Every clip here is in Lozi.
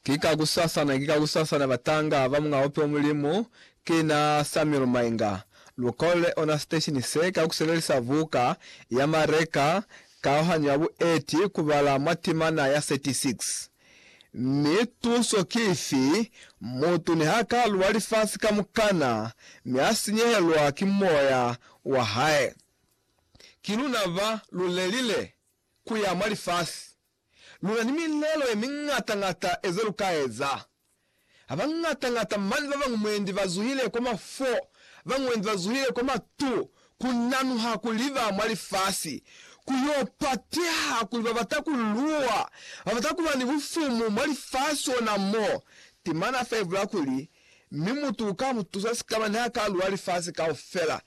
Ki ka kusasana, ki ka kusasana batanga ba Muñ'a Ope wa Mulimu, ki na Samuel Mainga. Lu kolele ona siteshini se ka ku sebelisa buka ya Mareka, Kaohanyo ya Bueti, ku bala mwa timana ya 36. Mi tuso ki ifi? Mutu niha ka luwa lifasi kamukana, mi a sinyehelwa ki moya wa hae, ki luna ba lu lelile. ku ya mwa lifasi. Lu na ni milelo ye miñata-ñata e ze lu ka eza. Ha ba ñata-ñata mane ba bañwi mwendi ba zuhile kwa mafwo, ba bañwi mwendi ba zuhile kwa matu, ku nanuha kuli ba mwa lifasi. Ku y'o pateha kuli ba bata ku luwa, ba bata ku ba ni bufumu mwa lifasi ona mo. Temana fa ibula kuli, Mi mutu uka mu tusa sikamani ha ka lwa lifasi kaufela.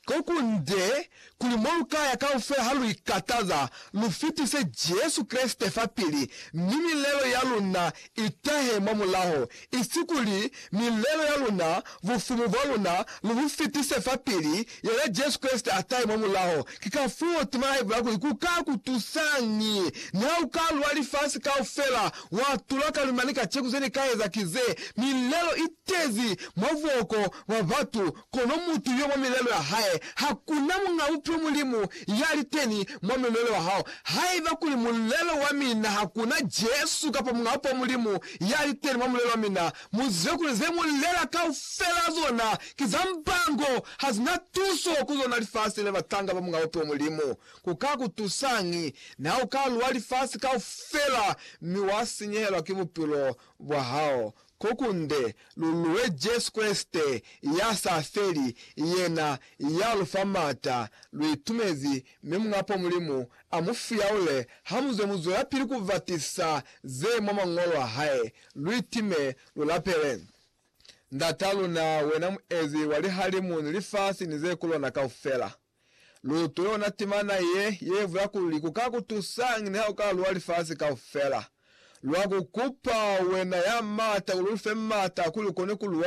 Ko kunde kuli mo lu ka ya kaufela ha lu ikataza, lu fitise Jesu Kreste fapili, mi milelo ya luna i tahe mwa mulaho, isi kuli milelo ya luna, bufumu bwa luna, lu bu fitise fapili Yena Jesu Kreste a tahe mwa mulaho. Ki kafoo tema ya Bibele ya kuli, Ku ka ku tusañi niha u ka lwa lifasi kaufela? wa tula ka lima ni ka ceku ze ni ka eza ki ze, Milelo i tezi mwa buhoko bwa batu, kono mutu yo mwa milelo ya hae. Ha ku na muñ'a buphilo Mulimu ya li teni mwa milelo ya hao. Haiba kuli mulelo wa mina ha ku na Jesu kapa Muñ'a Bupo Mulimu ya li teni mwa mulelo wa mina, Muzibe kuli ze mu lela kaufela zona ki za mbango, hazina tuso ku zona lifasi le batanga ba Mulao to Mulimu. Ku ka ku tusañi na u ka lwa lifasi kaufela mi wa sinyehelwa ki bupilo bwa hao? Ko kunde lu lwe Jesu Kreste ya sa feli, yena ya lu fa m'ata. Lu itumezi, mi Mulao Mulimu a mu fiyaule ha mu zwe mu zwelapili ku batisa ze mwa Mañolo a hae. Luitime, lulapele. Ndat'a luna, wena muezi wa lihalimu ni lifasi ni ze ku lona kaufela, lutule ona timana ye, ye vula kuli ku ka ku tusañi niha u ka luwa lifasi kaufela. Lwa ku kupa, wena ya m'ata, kuli u lu fe m'ata kuli u kone ku luwa